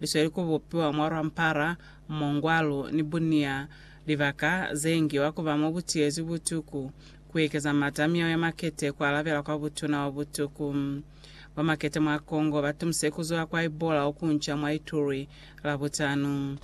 Lisweli ku bupiwa mwa lwampara, mongwalu, ni bunia, libaka ze ngiwa ku ba mo bu tiyezwi butuku, ku ekeza mata a miyao ya makete, ku alabela kwa butuna bwa butuku. Ba makete mwa Congo ba tumise ku zula kwa Ebola o kunca mwa Ituri Labutanu.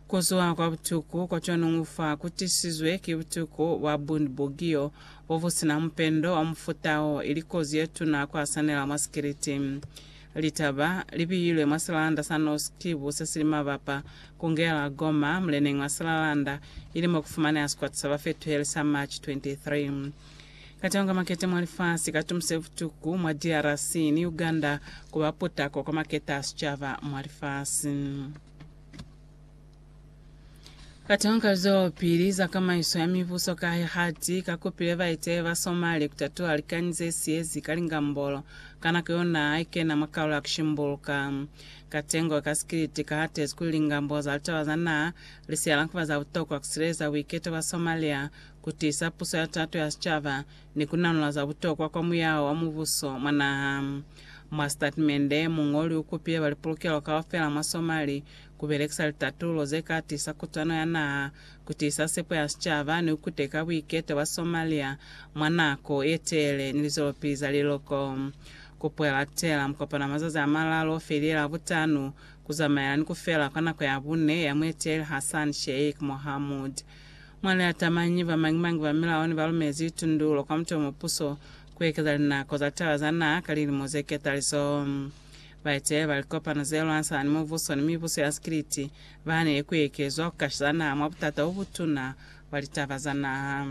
Ku zula kwa butuku kwa cwanuñu fa ku tisizwe ki butuku bwa Bundibugyo bo bu si na mupendo wa mufuta wo, ili kozi ye tuna ku hasanela mwa sikiliti. Litaba li biyilwe mwa silanda sa Norsk Tibo se sili mabapa ku ngela Gomma muleneng wa silalanda, ili mo ku fumaneha sikwata sa bafetuheli sa March 23. Kateho ka makete mwa lifasi ka tumuse butuku mwa DRC ni Uganda ku ba putako kwa makete a sicaba mwa lifasi. Katonka zwelopili za kamaiso ya mibuso kahe hati kakupile baiteli ba Somali kutatuha likani zesiyezi ka lingambolo ka nako yo naha haikena mwa kalulo ya kushimbuluka. Katengo ka sikiliti kahatezi kuli lingambolo za litaba za naha lisiyala kuba za butokwa kusileleza buiketo bwa Somalia, kutiisa puso ya tato ya sicaba, ni kunanula za butokwa kwa muyao wa mubuso mwa naha. Mwa sitatimende, muñoli ukupile ba lipulukelo kaufela mwa Somali ku belekisa litatulo ze ka tisa kutwano ya naha, ku tiisa sepo ya sicaba, ni ku kuteka buiketo bwa Somalia mwa nako ye teele ni lizolopili za liloko. Kopo ya latela mukopano wa mazazi a malalu o felela Butanu, ku zamaela ni ku fela kwa nako ya bune ya mueteleli Hassan Sheikh Mohamud. Mwa liatamanyi, ba mañi-mañi ba milao ne ba lumezi litundulo kwa mutu yo mupuso ku ekeza linako za litaba za naha ka lilimo ze ketaliso. Baeteleli ba likopano ze lwanisana ni mubuso ni mibuso ya sikiliti bahanile ku ekezwa ku kashiza naha mwa butata bo butuna bwa litaba za naha.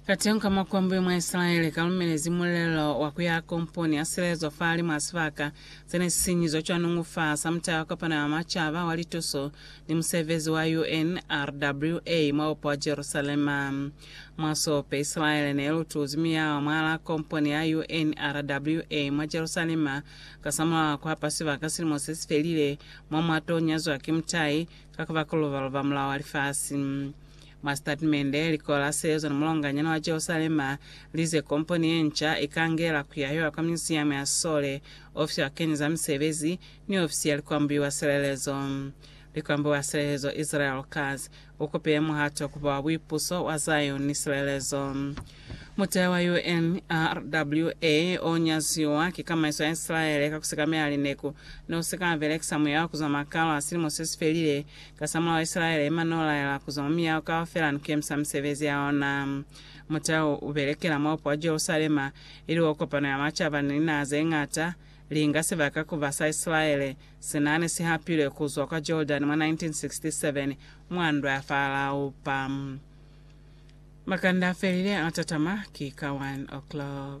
Kateñi ka makombwi mwa Isilaele kalumelezi mulelo wa ku ya komponi ya silezo fahalimw'a sibaka se ne si sinyizwe cwa nungu fa sa Mutala wa Kopano ya Macaba wa Lituso ni Musebezi wa UNRWA mwa Bupo wa Jerusalema. Mwa sope, Isilaele ne lu tuzi miyaho mwalaa komponi ya UNRWA mwa Jerusalema kasamulaho a ku hapa sibaka silimo se si felile mo mwa t'o nyazwa ki mutai ka ku ba ku luba-luba mulao wa lifasi. Mwa sitatimende, Likolo la Sezo ni Mulonganyana wa Jerusalema li ze komponi ye nca i ka ngela ku yahiwa kwa Myuziyamu ya Sisole, Ofisi ya Bakeñi za Misebezi, ni Ofisi ya Likwambuiwa Silelezo. Likwambuiwa Silelezo Israel Katz, U kupile muhato ku ba buipuso bwa Zaione, silelezo. Mutehe wa UNRWA o nyaziwa ki kamaiso ya Isilaele ka ku sekamela lineku ne u si ka belekisa muya wa ku zwa makalo a silimo se si felile. Kasamulaho Isilaele i manno laela ku zwa mwa miyaho kaufela ni ku yemisa misebezi ya ona. Mutehe u belekela mwa bupo wa Jerusalema, ili o kopano ya macaba ni linaha ze ñata. linga sibaka ku ba sa Isilaele senani si hapilwe ku zwa kwa Jordani mwa 1967 mwa ndwa ya Farao. Pa makanda a felile a tatama ki ka 1:00.